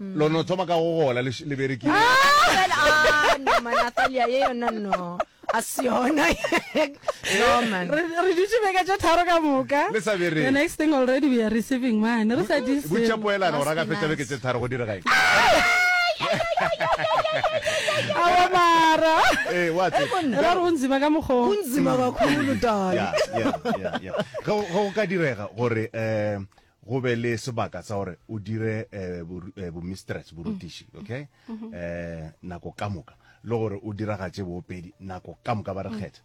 lo no thoma ka go gola le, le berekile ah, no man atalia ye yona no a se yona no man re re dutse beka tša tharo ka moka le sa bereke the next thing already we are receiving mane re sa di butša poelana gore a ka fetša beke tše tharo go direga eng awa mara eh wa tse ra re o nzima ka mokgwa o nzima kakhulu dala ge go ka direga gore um go be le sebaka sa gore o dire eh, eh, bomistress borutiši mm. okay mm-hmm. eh, nako ka moka le gore o diragatše boopedi nako ka moka ba re mm. kgetha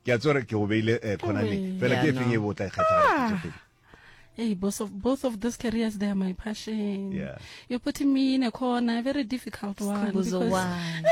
ke a tsore ke o beile khonane fela ke efeng e bo tla e kgetha ah. both of both of those careers they are my passion yeah You put me in a corner, a very difficult one. Khumbuzo because- one.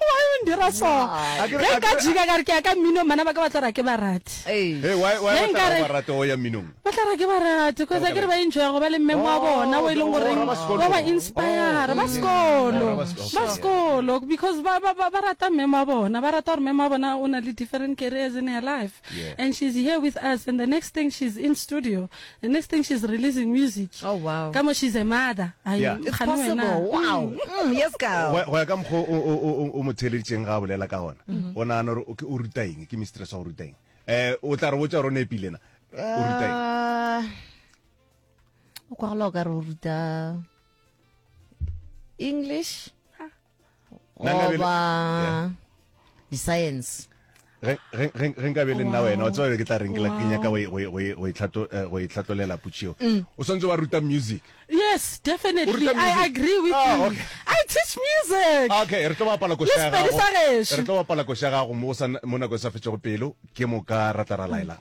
Why o ndira so? Why? Akere- Ge nka akere- jika ka re ke ya ka mmino mana ba ka ba tla ra ke barati. Hey, why- why Ge ba tla nkare- ba rata go ya mminong? Ba tla ra ke barati because Ka a ke re ba enjoya go ba le mmemo wa Oh, bona o e leng oh, goreng ba ba sekolo. ba ba inspire ba sekolo Oh, ba sekolo. ba sekolo because ba ba ba ba rata mmemo wa bona ba rata gore mmemo wa bona o na le different careers in her life Yeah. and she's here with us and the next thing she's in studio The next thing she's releasing music. Oh wow. Ka mo she's a mother. Ai, Yeah. It's kgane wena. possible. Wow. Mm, yes, gal. Go ya- go ya ka mokgwa o- o- o- o- o mo theeleditseng ga a bolela ka gona o nagana gore o ke- o ruta eng ke mistress wa go ruta eng um o tla re botsa gore o ne epilena o ruta eng Ah, o kwa gola o ka re o ruta english goba di-science ge nka be le nna wena o tsebale ke tla reng ke nyaka go itlhatlolela eh, pucheo mm. o swantse wa ruta music yes definitely i agree with ah, you okay. i teach music okay re tlo bapala košagago re tlo bapala košagago mo nako e sa fetšego pelo ke moka ra tla ra laelang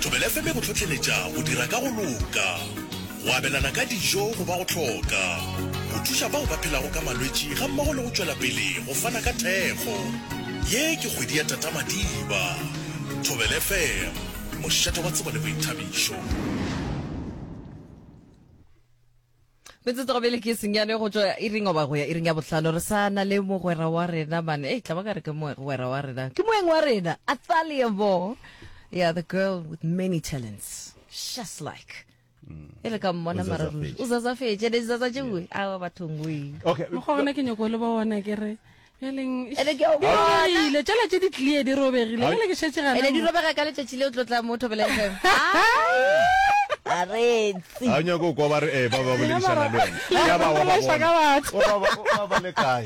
Thobela FM e go hlohleletša go dira ka go loka, go abelana ka dijo go ba go hloka, go thuša bao ba phelago ka malwetši gammogo le go tšwela pele go fana ka thekgo. Ye ke kgwedi ya Tata Madiba. Thobela FM, mošate wa tsebo le boithabišo. metsotso gabele ke senyane go tswa iring oba go ya iring ya bohlano re sa na le mogwera wa rena mane e tla ba ka re ke mogwera wa rena ke moeng wa rena athalia bo yeah the girl with many talents just like e re ka mmona mararuri o zazafetse ne zaza tšewe a bathong we okay mo gona ke nyoko le ba ona ke re bjalengile tšela tše di tlie di robegile gale ke šetse gane di robega ka letšatši le o tlotla mo thobela fm a retsi a nyako kwa ba re eh ba ba boledišana le wena ya ba wa ba bona wa ba wa ba le kae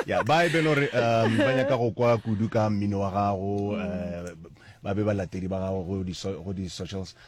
ya ba e belo re um ba nyaka go kwa kudu ka mmino wa gago eh, ba be ba latedi ba gago go di socials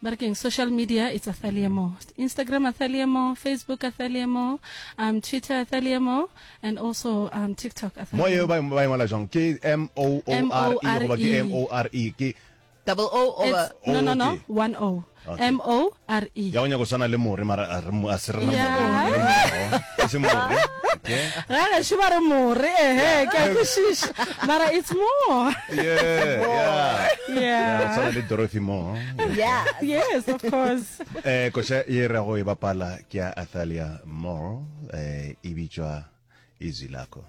ba re keng social media it's athaliemo instagram athaliemo facebook athaliemo um, twitter athaliemo and also um, tiktok mo eo ba e ngwala jang ke m o o r e goba ke m o r e ke double o over no no no one o m o r e ya o nyako tshwana le more mara a se re na more se more ga gešo ba re more ehe ke a kwešiša mara it's more Yeah, yeah. Yeah. Yeah, o tshwana le dorothy moore Yeah. yes of course eh koša ye ra go e bapala ke ya athalia moore eh e bitšwa izwi lakho